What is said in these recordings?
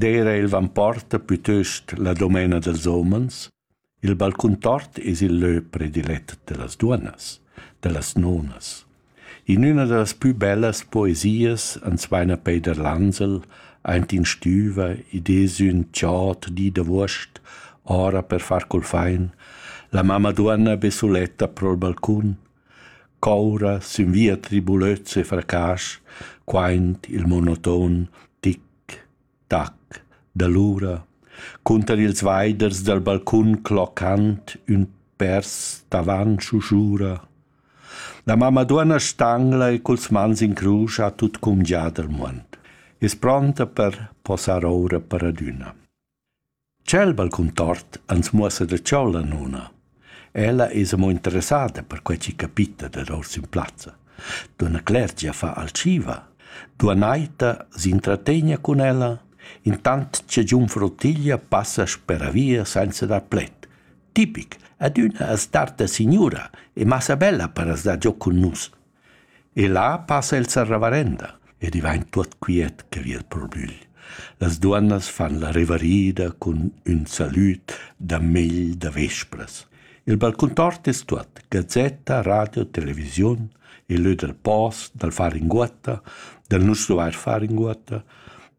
D'eira il vamporta pütöst la dumena dals homens, il balcun tort es il lö predilet da las duonnas, da las nonas. In üna da las pü bellas poesias ans vaina Peider Lansel aint in stüva ed es ün tschot di da vuost, ora per far cul fain, la mamma duonna be suletta pro'l balcun Coura sün via tribulöz e fracasch, quaint il monoton tic-tac dall'ura. Cunter ils vaiders dal balcun cloccand ün pers davant schusura. La mamma duonna stangla e culs mans in crusch ha tut cumgià dal muond. Es pronta per posar oura per adüna. Tschel balcun tort ans muossa da cheu la nona. Ella es amo interessada per quai chi capita dad ors in plazza. Dunna Clergia fa alciva. Duonna Aita s'intrategna cun ella, intant cha giunfra Ottilia passa speravia sainza dar pled. Tipic, adüna as darta signura e massa bella per as dar giò cun nus. E là passa el sa ravarenda ed i vain tuot quiet che vi al probügl. Las duonnas fan la revarida cun ün salüd da megl da vespras. Il balcun tort es tuot, gazetta, radio, televisiun, il lö dal post, dal far inguotta, dal nu stuvair far inguotta,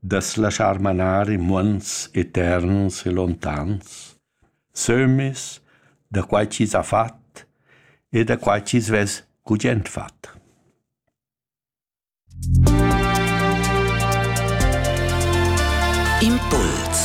da's laschar manar in muonds eterns e lontans. sömmis, da quai chi's ha fat e da quai chi's vess gugent fat. Impuls